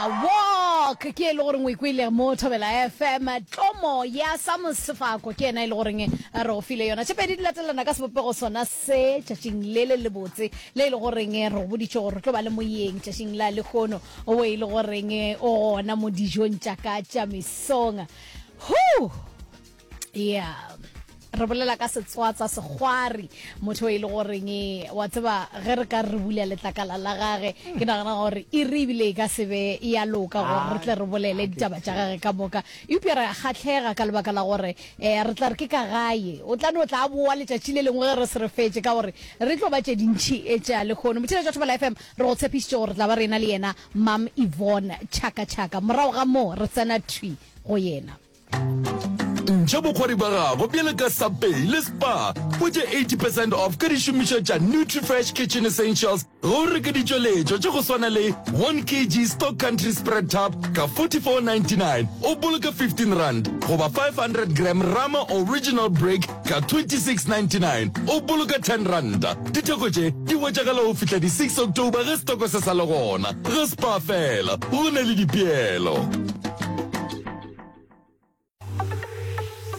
Walk ke e le goreng o ikwile mo Thobela FM tlomo ya Sam Sefako ke ena e le goreng re go file yona tše pedi di latelana ka sebopego sona se tšatšing le le lebotse le e le goreng re go boditše gore re tlo ba le moyeng tšatšing la lekgono o e le goreng o gona mo dijong tša ka tša mesong Whew! yeah re bolela ka setswatsa segwari motho e le goreng e, wa tseba ge re ka re bula letlakala la gage ke nagana gore e re ebile e ka sebe ya loka gore re tle re bolele ditaba tša gage ka moka eupša re kgatlhega ka lebaka la gore um re tla re ke ka gae o tla no tla boa letšatši le lengwe ge re se re fetse ka gore re tlo ba tše dintšhi e tša lekgono motšhile jwa thobela fm re go tshepišitše gore re tla ba re ena le yena mam evon chaka chaka morago ga moo re tsena thwi go yena Ntšha bokgwari ba gago bjale ka Subway le Spar. Hwetša 80 percent off ka dišomišwa tša Nutrifresh Kitchen Essentials ge o reka ditšweletšwa tša go swana le 1 kg Stock Country Spread Tub ka 44.99, o boloka 15 rand, goba 500 gram Rama Original Brick ka 26.99, o boloka 10 ranta. Ditheko tše di hwetšagala go fihla di 6 October ge setoko se sa le gona. Ge Spar fela, go na le dipeelo.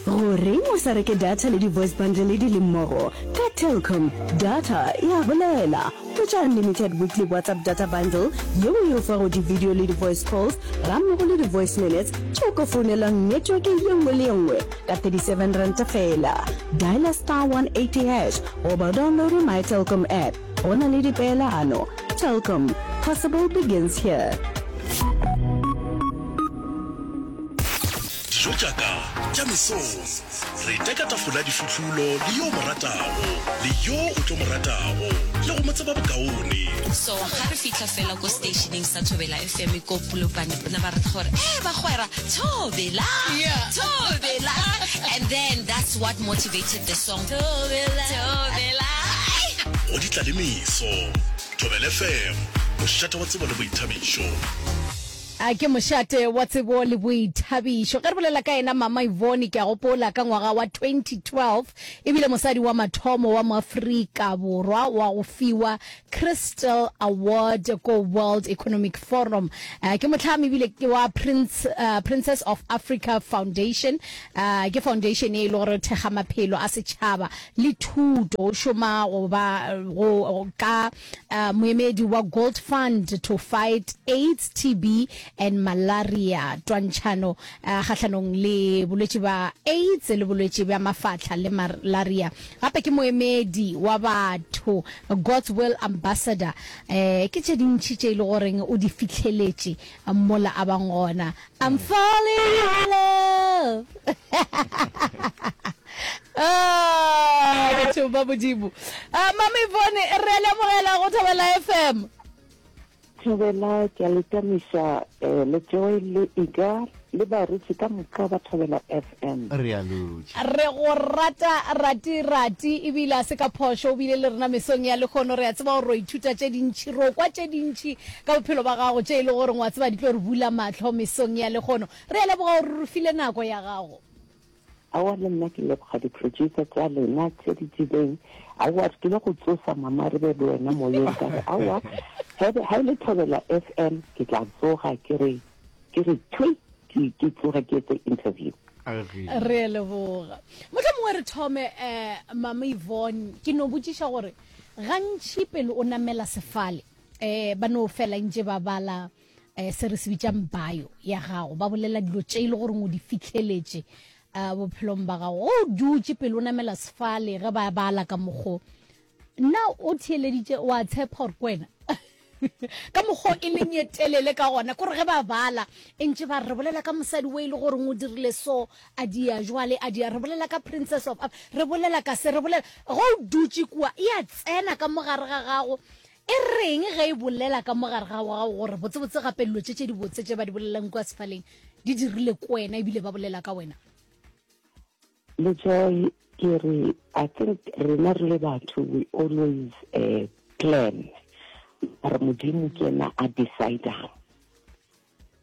gore o sa reke data le di-voice bundle di le mmogo ka telcom data e a bolela tsa unlimited weekly whatsapp data bundle yeo e o fago di-video le di-voice calls gammogo le di-voice minutes tšeo ka founelang network ye nngwe le ye nngwe ka 37 ranta fela dialer star 180 hash goba download my telcom app Go na le dipeelano. Telkom, possible begins here. Dijo tša ka tša mesong. Re teka tafola difutlulo le yo mo ratago, le yo o tlo mo ratago, le go mo tseba bokaone. So ga re fitlha fela ko stationeng sa Thobela FM ko Polokwane bona ba re gore eh bagwera Thobela yeah. Thobela and then that's what motivated the song Thobela, thobela. Go di tla le meso. Thobela FM, mošate wa tsebo le boithabišo. A ke mošate wa tsebo le boithabišo ge re bolela ka ena mama ivone ke a gopola ka ngwaga wa 2012 e bile mosadi wa mathomo wa moafrika borwa wa go fiwa Crystal Award ko World Economic Forum. Uh, ke motlhami bile ke wa Prince, uh, Princess of Africa Foundation. Uh, ke foundation e le gore thekga maphelo a setšhaba le thuto. O šoma go ba go ka uh, moemedi wa Gold Fund to fight AIDS, TB and malaria. Twantšhano uh, kgahlanong le bolwetši ba AIDS le bolwetši bja mafatlha le malaria. Gape ke moemedi wa batho God's Will Ambassador, eh, ke tše dintši tše e le goreng o di fihleletše mola a bang gona. I'm falling in love. Ah, batho ba Modimo. Ah, Mama Yvonne, re a le amogela go Thobela FM. Thobela, ke a le tamiša eh, le Joy le Iga le baruti ka moka ba Thobela FM. Re a lutša. Re go rata Rati Rati ebile a se ka phošo o bile le rena mesong ya lekgono re a tseba gore o ithuta tše dintšhi ro kwa tše dintšhi ka bophelo ba gago tše e le gore ngwa tseba di tlo re bula mahlo mesong ya lekgono re a leboga gore re file nako ya gago Aowa le nna ke leboga di producer tša lena tše di tsebeng aowa re tlile go tsosa mama re be le wena moyeng ka re aowa hebe ha ile thobela fm ke tla tsoga ke re ke re thwi ke ke tsoge ke etse interview re a leboga motlha mongwe re thome um mama yvonne ke no botšiša gore gantši pele o namela sefale um ba no fela ntše ba bala um se re se bitsang bio ya gago ba bolela dilo tše e le goreng o di fitlheletše um bophelong ba gago o dutše pele o namela sefale ge ba bala ka mokgo nna o theeleditše wa tshepa gore kwena ka mokgo e leng ye telele ka gona kore ge ba bala e ntše ba re bolela ka mosadi o e le goreng o dirile so a dia jwale a dia re bolela ka princess of re bolela ka se re bolela go o dutše kua e a tsena ka mogare ga gago E reng ge e bolela ka mo gare ga gago gore botsebotse gape dilo tše tše dibotse tše ba di bolelelang kua sefaleng di dirile ko wena ebile ba bolela ka wena? Letsoe, Ke re, I think rena re le batho we always uh, plan, mara Modimo ke yena a decidang.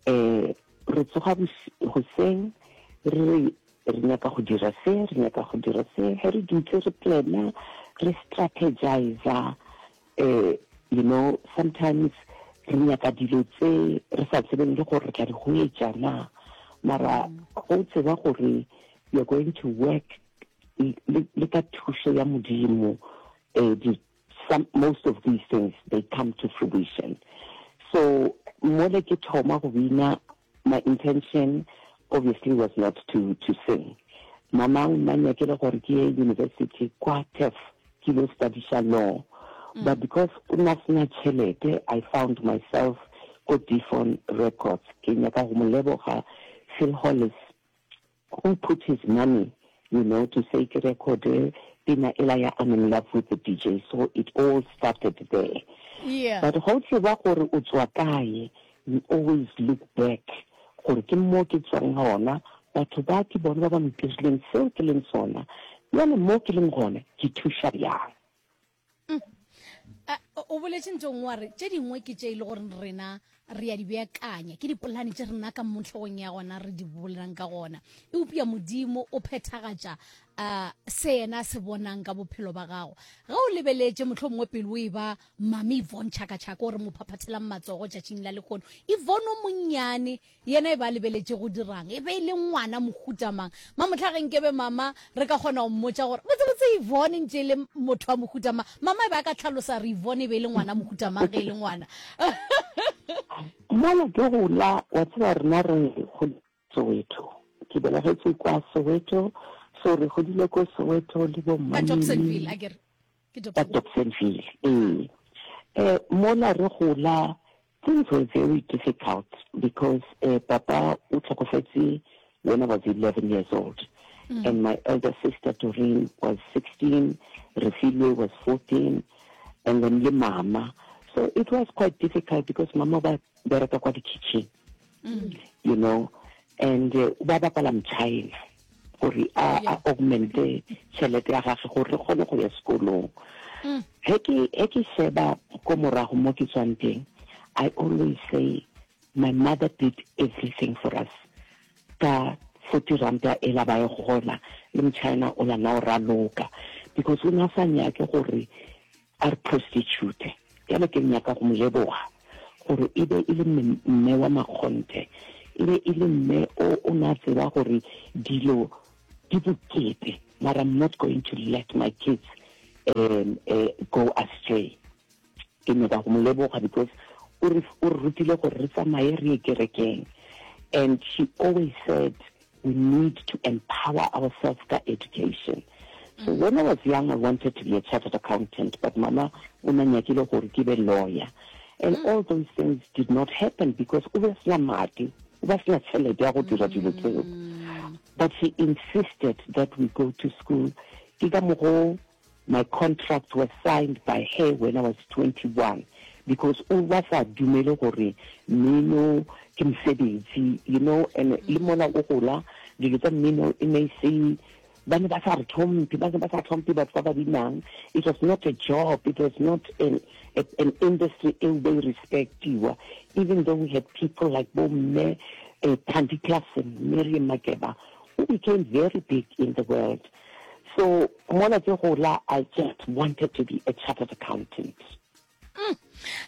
um re tsoga goseng re re re nyaka go dira se re nyaka go dira se ge re dutse re plana re strategiza um you know sometimes re nyaka dilo tse re sa tsebeng le gore re tla di go etša na mara go tseba gore you're going to work le ka thušo ya modimo um Some, most of these things they come to fruition. So mole ke thoma go bina, my intention obviously was not to to sing. Mama o nna nyakele gore ke ye university kwa TEF ke lo studyša law. Mm. But because o nna sena tšhelete, I found myself ko Defon Records. Ke nyaka go mo leboga Phil Hollis Who put his money you know to say ke recode pina ela ya I'm in love with the DJ so it all started there yeah. but ga o tseba gore o tswa kae you always look back gore ke mo ke tswang gona batho ba ke bone ba ba mpirileng seo ke leng sona bjale mo ke leng gone ke thuša bjang mm. o boletse ntong wa re tše dingwe ke tše e le gore rena re ya di beakanya ke dipolane tše rena ka motlhogong ya gona re di bolelang ka gona e upia modimo o phethagatša um se yena se bonang ka bophelo ba gago ge o lebeletše motlho mongwe pele o e ba mame ivon tšhakatšhaka o re mo phaphathelang matsogo tšatšing la lekgono ivon o monnyane Yena e be a lebeletše go dira'ng? E be e le ngwana mohuta mang? Ma, mohla ge nke be Mama re ka kgona go mmotša gore, Botsebotse Yvonne e ntše e le motho wa mohuta mang? Mama e be a ka hlalosa gore Yvonne e be e le ngwana mohuta mang ge e le ngwana. Mola ke gola, wa tseba rena re goletše Soweto. Ke belegetšwe kwa Soweto, so re godile ko Soweto le bo Ka Dobsonville, a ke re. Ke Dobsonville. Ka Dobsonville, ee. Mola re gola, Things were very difficult because uh, papa o tlhokofetse when I was 11 years old mm. and my elder sister Doreen was 16, Refilwe was 14 and then le mama so it was quite difficult because mama ba bereka kwa di-kitchen mm. you know and uh, ba bapala mchina gore a a augmente tšhelete ya gage gore re kgone go ya sekolong mm. ge ke ge ke sheba ko morago mo ke tswang teng i always say my mother did everything for us ka forty ranta e la baye gona le mchina o la na o raloka because o ne a sa nyake gore A re, Prostitute, bjale ke nyaka go mo leboga, gore e be e le mme, mme wa makgonthe, e be e le mme o o ne a tseba gore dilo di bokete, mara I'm not going to let my kids um, uh, go astray. Ke nyaka go mo leboga because o re, o re rutile gore re tsamaye re ye kerekeng. And she always said, We need to empower ourselves ka education. So mm. when I was young, I wanted to be a chartered accountant, but mama una nyakile gore ke be lawyer. And mm. all those things did not happen because o be sena madi, o ba sena tšhelete ya go dira dilo tseo. Mm. But she insisted that we go to school. Ke ka mogo My contracts were signed by her when I was 21 because o ba sa dumele gore mmino ke mosebetsi you know and le mola o gola dilo tsa mmino e ne e se ba ne ba sa re tlhomphe ba ne ba sa tlhomphe batho ba ba binang it was not a job it was not an, a, an industry e o bay respectiwa even though we had people like bo mme uh, Thandi Klassen Miriam Makeba who became very big in the world So mola ke gola I just wanted to be a chartered accountant. Mm.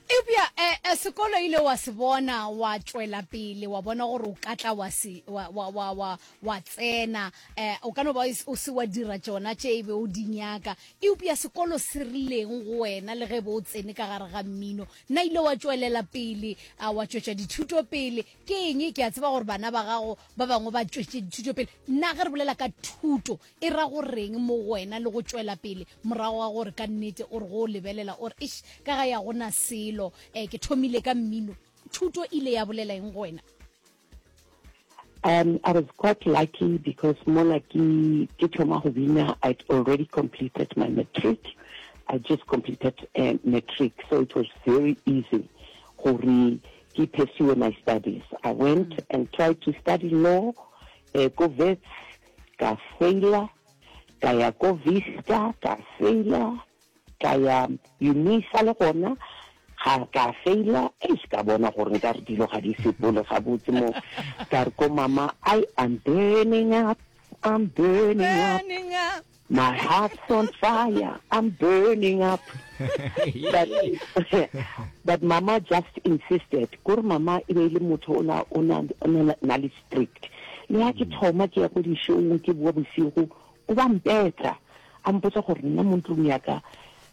Ebja eh, eh, sekolo ile wa se bona wa tšwela pele wa bona gore o ka tla wa se wa wa wa wa wa tsena eh o ka no ba o se wa dira tšona tše e be o di nyaka eupja sekolo se rileng go wena le ge bo o tsene ka gare ga mmino nna ile wa tšwelela pele a wa tšwetša dithuto pele Ke eng? Ke a tseba gore bana ba gago ba bangwe ba tšwetše dithuto pele. Na ge re bolela ka thuto, e ra go reng mo go wena le go tšwela pele morago ga gore ka nnete o re go o lebelela o re, Eish, ka gae ga go na selo, um ke thomile ka mmino? Thuto e ile ya bolela eng go wena? Um, I was quite lucky because mola ke, ke thoma go bina, I'd already completed my matric. I just completed, um, matric, so it was very easy gore Ke pursue my studies, I went and tried to study law ko Wits, ka failer, ka ya ko Vista, ka failer, ka ya Unisa le gona ga ka failer, eish ka bona gore nkare dilo ga di sepole gabotse mo, ka re ko mama I am burning up, I'm burning up. My heart's on fire, I'm burning up. but, but mama just insisted. Kore mama e be le motho o na o na na le strict. Le ha ke mm. thoma ke ya go di show ke bua bosigo, o ba mpetsa. A mpotsa gore nna mo ntlong ya ka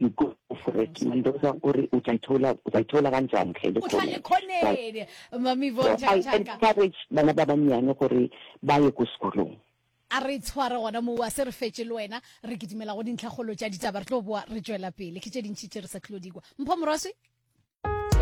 Dikoporeti Mendoza o re o tla ithola o tla ithola ka ntšane ge e le kgone. I encourage bana ba bannyane gore ba ye ko sekolong. A re tshware gona moo, a se re fetše le wena. Re kitimela go dintlhakgolo tša ditaba, re tlo boa re tšwela pele. Ke tše dintši tše re sa tlilo di kwa. Mpho Morwaswi.